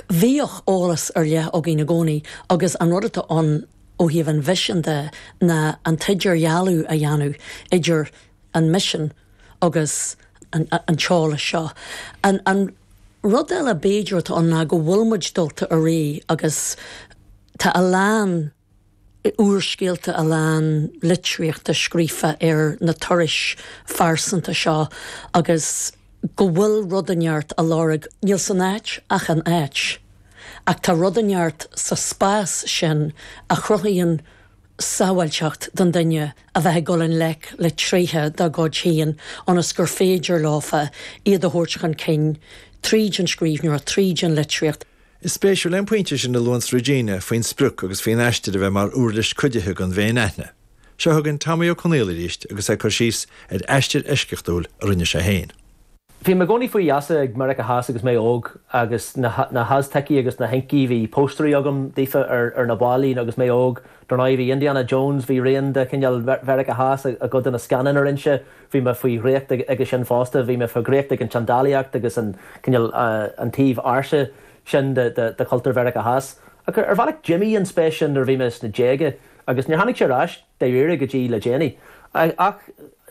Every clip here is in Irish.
Bhíodh eolas ar leith againne i gcónaí agus an rud atá ann ó thaobh an mhisin de ná an t-idirdhealú a dhéanamh idir an misean agus an t-eolas seo. An rud eile b'fhéidir atá ann ná go bhfuil muid dulta i ré agus tá a lán. úrscéalta a lán litríochta scríofa ar na turais phearsanta seo agus go bhfuil rud inteacht á lorg, níl san áit ach an áit, ach tá rud inteacht sa spás sin a chruthaíonn sábháilteacht don duine a bheith ag dul i ngleic le tréithe dá gcuid féin ionas gur féidir leofa iad a thabhairt chun cinn tríd an scríbhneoireacht, tríd an litríocht. Is spéisiúil é an pointe sin a luanns Regina faoin sprioc agus faoin aistear a bheith mar uirlis cuidithe don fhéinaithne. Seo chugainn Tommy Ó Conaola arís agus é ag cur síos ar aistear eisceachtúil a rinne sé féin. Bhí mé i gcónaí faoi gheasa ag Meiriceá Theas agus mé óg agus na hAztecigh agus na hIncigh, bhí póstairí agam daofa ar na ballaí agus mé óg. Dar ndóigh, bhí Indiana Jones, bhí rian de chineál Mheiriceá Theas i gcuid de na scannáin a rinne sé Bhí mé faoi dhraíocht aige sin fosta. Bhí mé faoi dhraíocht ag an tseandálaíocht agus an cineál, an taobh ársa sin de chultúr Mheiriceá Theas. Ach ar bhealach d'imigh an spéis sin nuair a bhí mé sna déaga agus níor tháinig sé ar ais dáiríre go dtí le déanaí. Ach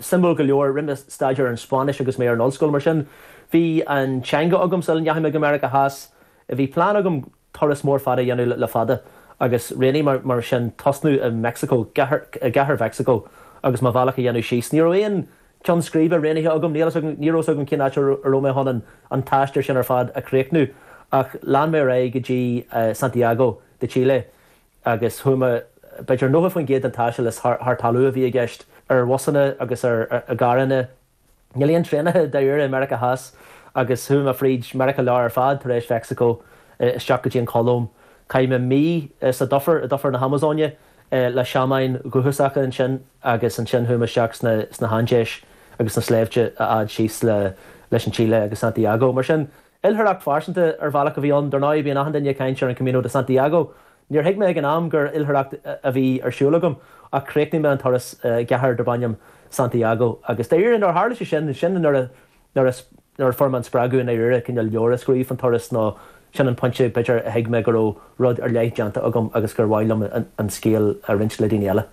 suimiúil go leor, rinne mé staidéar ar an Spáinnis agus mé ar an ollscoil, mar sin bhí an teanga agam sula ndeachaigh mé go Meiriceá Theas. Bhí plean agam turas mór fada a dhéanamh le fada agus rinne mé mar sin tosnú i Meicsiceo, i gcathair Mheicsiceo agus mo bhealach a dhéanamh síos. Ní raibh aon cheann scríbe roghnaithe agam, ní raibh fhios agam cén áit a raibh mé chun an an taisteal sin ar fad a chríochnú ach lean mé ar aghaidh go dtí Santiago de Chile agus chuaigh mé, b'fhéidir 90% den taisteal is thar thar talamh a bhí i gceist, ar bhusanna agus ar i gcarranna. Níl aon traenacha dáiríre i Meiriceá Theas agus chuaigh mé fríd Meiriceá Láir ar fad tar éis Mheicsiceo isteach go dtí an Cholóim. Chaith mé mí sa dufair, i dufair na hAmazóine, le seamáin dhúchasacha ansin agus ansin chuaigh mé isteach sna hAindéis agus sna sléibhte a fhad síos leis an tSile agus Santiago. Mar sin, Oilithreacht phearsanta ar bhealach a bhí ann, dar ndóigh, bíonn achan duine ag caint ar an Camino de Santiago. Níor thuig mé ag an am gur oilithreacht a bhí ar siúl agam ach chríochnaigh mé an turas i gcathair darb ainm Santiago agus dáiríre nuair a tharla sé sin, sin nuair a fuair mé an spreagadh i ndáiríre cineál leabhar a scríobh faoin turas nó sin an pointe b'fhéidir a thuig mé go raibh rud ar leith déanta agam agus gur mhaith liom an scéal a roinnt le daoine eile.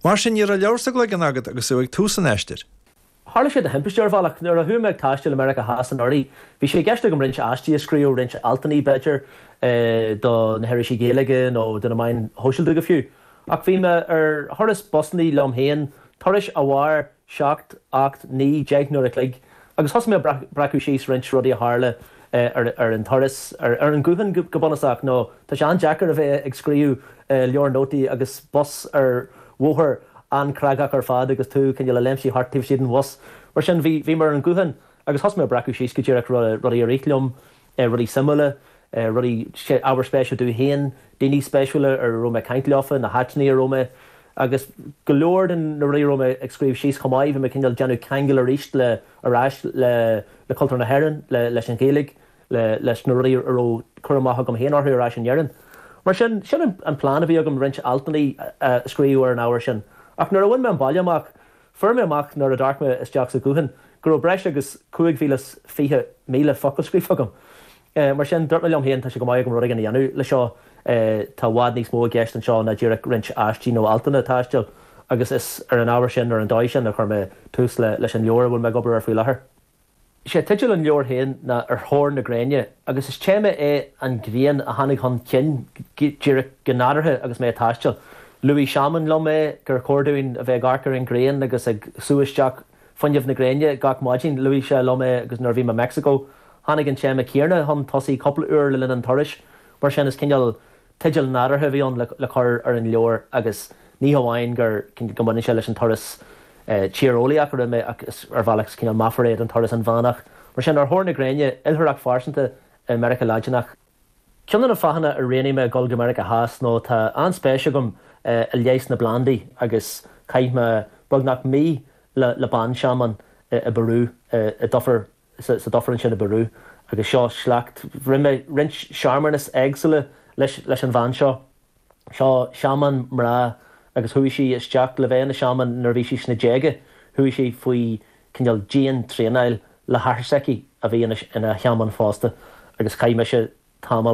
Mar sin ní raibh leabhar sa gcloigeann agat agus tú ag tús an aistir? Tharla sé de thimpiste, ar bhealach. Nuair a chuaigh mé ag taisteal i Meiriceá Theas anuraidh, bhí sé i gceist agam roinnt aistí a scríobh, roinnt altanna, b'fhéidir, do na hirisí Gaeilge nó do na meáin shóisialta go fiú. Ach bhí mé ar thurais busanna liom féin, turais a mhair seacht, ocht, naoi, deich n-uair a chloig, agus thosaigh mé ag breacadh síos roinnt rudaí a tharla, ar an turas, ar an ghuthán go bunúsach, nó tá sé an-deacair a bheith ag scríobh leabhar nótaí agus bus ar bhóthar an-chreagach ar fad agus tú cineál ag léimnigh thart taobh istigh den bhus. Mar sin, bhí mé ar an ghuthán agus thosaigh mé ag breacadh síos go díreach rudaí a rith liom, rudaí suimiúla, rudaí, ábhar spéise domh féin, daoine spéisiúla a raibh mé ag caint leofa, na háiteanna a raibh mé. Agus go leor de na rudaí a raibh mé ag scríobh síos chomh maith, bhí mé cineál ag déanamh ceangail arís le, ar ais le cultúr na hÉireann, leis an Ghaeilge, leis na rudaí a raibh cur amach agam féin orthu ar ais in Éirinn. Mar sin, sin an plean a bhí agam roinnt altanna a scríobh ar an ábhar sin. Ach nuair a bhain mé an baile amach, fuair mé amach nuair a d'amharc mé isteach sa ghuthán go raibh breis agus 25,000 focal scríofa agam. é. Mar sin, dúirt mé liom féin, tá sé chomh maith agam rud éigin a dhéanamh leis seo. Tá i bhfad níos mó i gceist anseo ná díreach roinnt aistí nó altanna taistil agus is ar an ábhar sin, ar an dóigh sin, a chuir mé tús leis an leabhar a bhfuil mé ag obair air faoi láthair. Is é teideal an leabhair féin ná Ar Thóir na Gréine agus is téama é an ghrian a tháinig chun cinn díreach, go nádúrtha agus mé ag taisteal. Luaigh seamán liom é, gur chóir dúinn a bheith ag amharc ar an ghrian agus ag sú isteach, fuinneamh na gréine gach maidin. Luaigh sé liom é agus nuair a bhí mé i Meicsiceo, tháinig an téama céanna chun tosaigh cúpla uair le linn an turais. Mar sin, is cineál teideal nádúrtha a bhí ann le cur ar an leabhar agus ní hamháin go, go mbaineann sé leis an turas tíreolaíoch a rinne mé ach ar bhealach is cineál meafar é don turas inmheánach. Mar sin, ar thóir na gréine, oilthireacht phearsanta i Meiriceá Laidineach. Ceann de na fáthanna a roghnaigh mé a dhul go Meiriceá Theas nó tá an-spéis agam i leigheas na bplandaí agus chaith mé beagnach mí le banseamán i bPeiriú, i dufair, sa dufair ansin i bPeiriú agus seo sliocht, rinne mé roinnt searmanas éagsúla leis an bhean seo. seo seamán mná agus chuaigh sí isteach le bheith ina seamán nuair a bhí sí sna déaga. Chuaigh sí faoi cineál dian-traenáil le hathair s'aici a bhí ina sheamán fosta agus chaith mise tamall